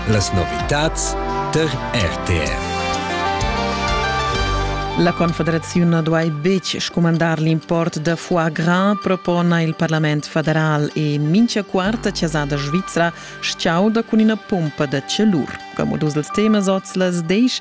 Las novitads tar RTR. La Confederaziun duai betg scumandar l'import da foie gras, propona il Parlament federal e mincha quarta chasada svizra s-chauda cun ina pompa da celur. Como dus dels temas oz las desch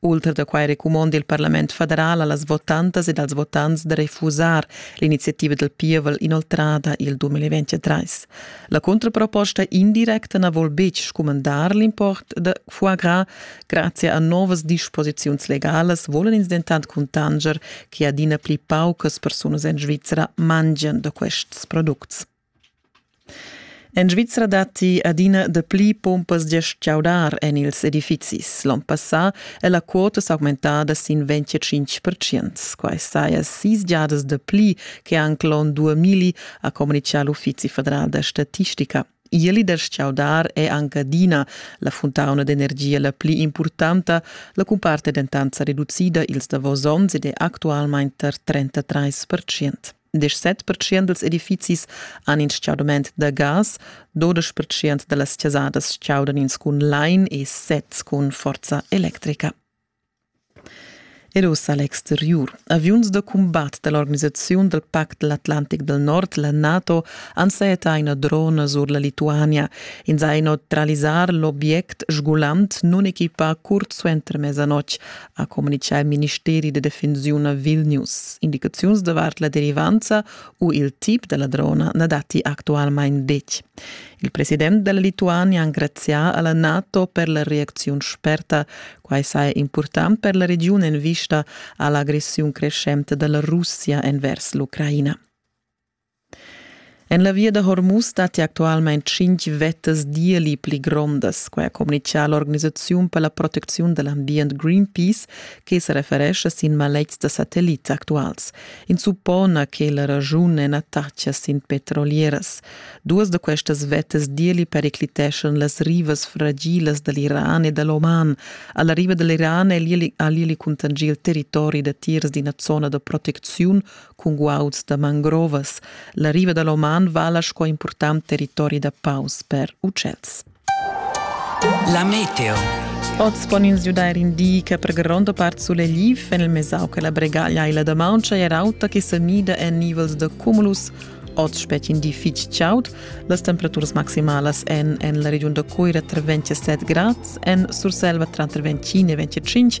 Ultra da quai recumonda il parlament federal a las votantas ed als votants da refusar l'iniziativa dal pievel inoltrada il 2023. La contraproposta indirecta na vul betg scumandar l'import da foie gras. Grazie a novas disposiziuns legalas volan ins dentant cuntanger che adina pli paucas persunas en Svizra mangian da quests products. En Svizra datti adina dapli pumpas da chaudar en ils edifizis. L'onn passà è la quota s'augmentada sin 25 percent. Quai saja sis giadas dapli che anc l'onn 2000, ha communitgà l'Uffizi federal da statistica. Ieli da chaudar è anche adina la funtauna d'energia la pli impurtanta. La cumpart è dentant sa reducida ils davos onns ed è actualmain tar 33 percent. 17% dels edifizis han in stgaudament da gas, 12% da las chasadas chaudan ins cun lain e sets cun forza electrica. Ed uss a l'exteriur. Aviuns da cumbat da l'organisaziun dal Pact de l'Atlantic del Nord, la NATO, han seeta ina drona sur la Lituania. Ins ha inotralisar l'obiect sgulant nun equipa curt suenter mesanotg, ha communitgà il ministeri da defensiun a Vilnius. Indicaziuns davart la derivanza u il tip da ladrona na datti actualmain detg. Il president della Lituania ha ringrazià alla NATO per la reaczione sperta. Quai saja important per la regiun en vista all'aggressione crescente della Russia envers l'Ucraina. En la via da Hormuz datti actualmain tschintg vettas d'ieli pli grondas. Quai ha communitgà l'organisaziun per la protecziun da l'ambient Greenpeace che sa referescha sin maletgs da satellits actuals. Ins suppona che la raschun è nataccia sin petrolieras. Duas da questas vettas d'ieli pericliteschan las rivas fragilas da l'Iran e da l'Oman. A la riva da l'Iran ha l'ieli contingì il territori datiers d'ina zona da protecziun cun guauds da mangrovas. La riva da l'Oman vala sco impurtant territori da paus per ucels. La meteo. Oz pon ins giudair in di che per gronda part sulegliv en il mesau che la bregaglia e la damauncha è auta che se mida en nivels da cumulus Oz spetg in di fitg chaud. Las temperaturas maximalas en en la regiun da Cuira tra 27 grads, en Surselva tra 25 e 25